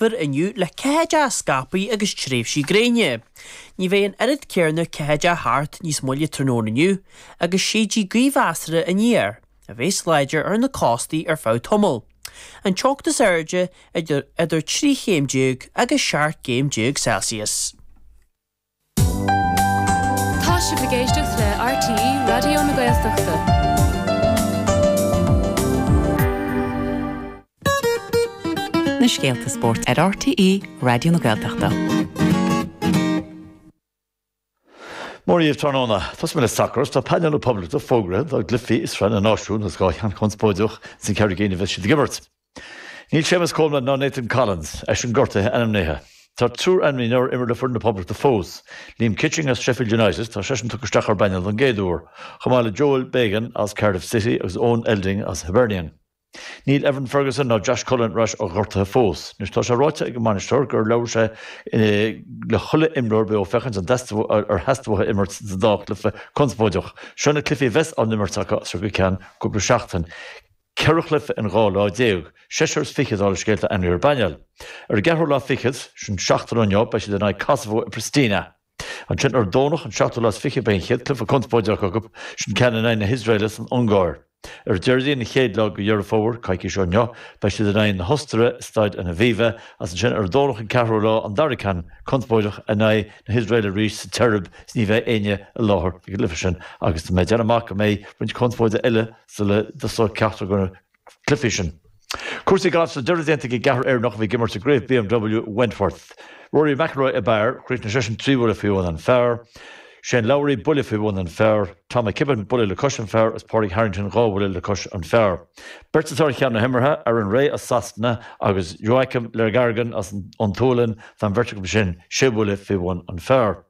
Fir inniu le ceathaideacha scaipthe agus tréimhsí gréine. Ní bheidh an oiread céarna ceathaideacha thart níos moille tráthnóna inniu agus séidfidh gaoth mheasartha aniar, a bheas láidir ar na cóstaí ar feadh tamaill. An teocht is airde idir 13 chéim agus 17 gcéim Celsius. Tá sibh ag éisteacht le RTÉ Raidió na Gaeltachta. Na scéalta spóirt ar RTÉ Raidió na Gaeltachta. Mora daoibh tráthnóna. Tosóidh mé le sacar agus tá painéal na Poblachta fógraithe dá gcluifí i Sraith na Náisiún agus dhá cheann conspóideach ins na ceithre cinn a bheas siad ag imirt. Níl Séamus Coleman ná Nathan Collins, eisean gortaithe, ainmnithe. Tá triúr ainmnithe nár imir le foireann na Poblachta fós, Liam Kitching as Sheffield United, tá seisean tugtha isteach ar an bpainéal don gcéad uair, chomh maith le Joel Bagan as Cardiff City agus Owen Elding as Hibernian. Níl Evan Ferguson ná Josh Cullen ar ais ó ghortuithe fós. Anois, tá sé ráite ag an mbainisteoir gur labhair sé le chuile imreoir beo féachaint an dteastódh ar theastaigh uathu imirt sa dá chluiche conspóideach. Seo na cluichí a bheas á n-imirt acu as seo go ceann cúpla seachtain. ceithre chluife in dhá lá déag, seisear is fiche dála an scéil atá ainmnithe ar an bpainéal. Ar an gceathrú lá fichead, sin seachtain ó inniu, beidh siad in aghaidh Kosovo i Pristina. Ansin ar an Domhnach, an seachtú lá is fiche, beidh an chéad chluife conspóideach acu, sin ceann in aghaidh na hIosraeile san Ungáir. Ar an Déardaoin, an chéad lá de Dheireadh Fómhair, coicís ó inniu, beidh siad in aghaidh na hOstaire i Staid an Aviva, agus ansin ar an Domhnach, an ceathrú lá, an dara ceann conspóideach in aghaidh na hIosraeile arís sa tSeirb is ní bheidh éinne i láthair ag an gcluife sin agus tá mé ag déanamh amach go mbeidh roinnt conspóide eile sula dtosóidh ceachtar de na cluifí sin. Cúrsaí gailf is tá deireadh déanta ag an gceathrar Éireannach a bhí ag imirt i gCraobh BMW Wentworth. Rory McIlroy ab fhearr, chríochnaigh seisean trí bhuille faoi bhun an phar. Shane Lowry buille faoi bhun an phar. Tom McKibbin buille le cois an phar agus Pádraig Harrington dhá bhuille le cois an phar. Beirt atá ar cheann na himeartha, Aaron Rai as Sasana agus Joakim Lagergren as an tSualainn, tá an bheirt acu sin sé bhuille faoi bhun an phar.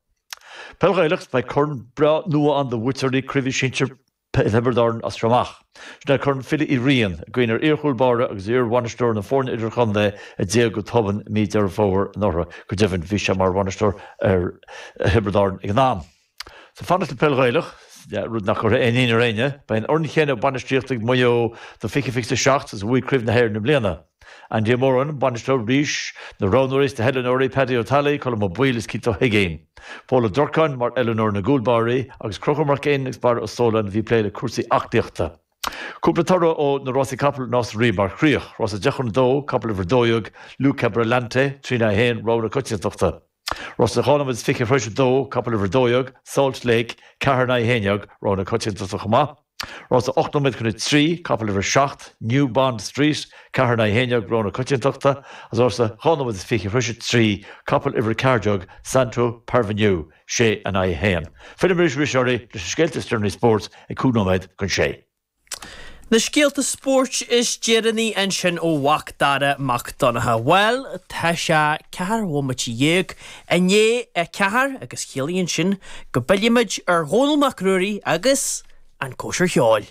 Peil Ghaelach, Beidh corn breá nua ann do bhuaiteoirí Craoibhe Sinsir P Thiobraid Árann as seo amach. Sin é Corn Philly Uí Riain, i gcuimhne ar iarchúl báire agus iarbhainisteoir na foirne idirchontae a d'éag go tobann mí Deireadh Fómhair anuraidh. Go deimhin, bhí sé mar bhainisteoir ar Thiobraid Árann ag an am. Is ag fanacht le peil Ghaelach, rud nach gcuirfidh aon ionadh ar éinne. Beidh an fhoireann chéanna bainistíochta ag Maigh Eo do 2027 agus a bhuaigh Craobh na hÉireann i mbliana. Andy Ó Móráin, bainisteoir arís, na roghnóirí is na hoiliúnóirí Paddy Ó Talley, Colm Ó Baoill is Keith Ó hUiginn. Paul Ó Durcáin mar oiliúnóir na gcúlbáirí agus Conchúr Mac Fhinn agus Barra Ó Sóláin a bhí ag plé le cúrsaí aclaíochta. Cúpla toradh ó na rásaí capall Nás na Rí mar chríoch, Rás a deich chun a dó, Capall uimhir a dó dhéag, Luke Abrolante, trí in aghaidh a haon, Rogha na Coitiantachta. Rás a dhá nóiméad is fiche tar éis a dó, capall uimhir a dó dhéag, Salt Lake, ceathair in aghaidh a haon dhéag, rogha na coitiantachta chomh maith. Rás a hocht nóiméad chun a trí, capall uimhir a seacht, New Bond Street, ceathair in aghaidh a haon dhéag, rogha na coitiantachta, agus rás a dhá nóiméad is fiche tar éis a trí, capall uimhir a ceathair déag, Santo Parvenu, sé in aghaidh a haon. Fillfimid arís oraibh leis na scéalta is deireanaí spóirt ag cúig nóiméad chun a sé. Na scéalta spóirt is deireanaí ansin ó Mhac Dara Mac Donncha, bhuel, tá sé ceathair bhomaite dhéag i ndiaidh a ceathair agus ciallaíonn sin go bpillfimid ar Dhónall Mac Ruairí agus an chóisir cheoil.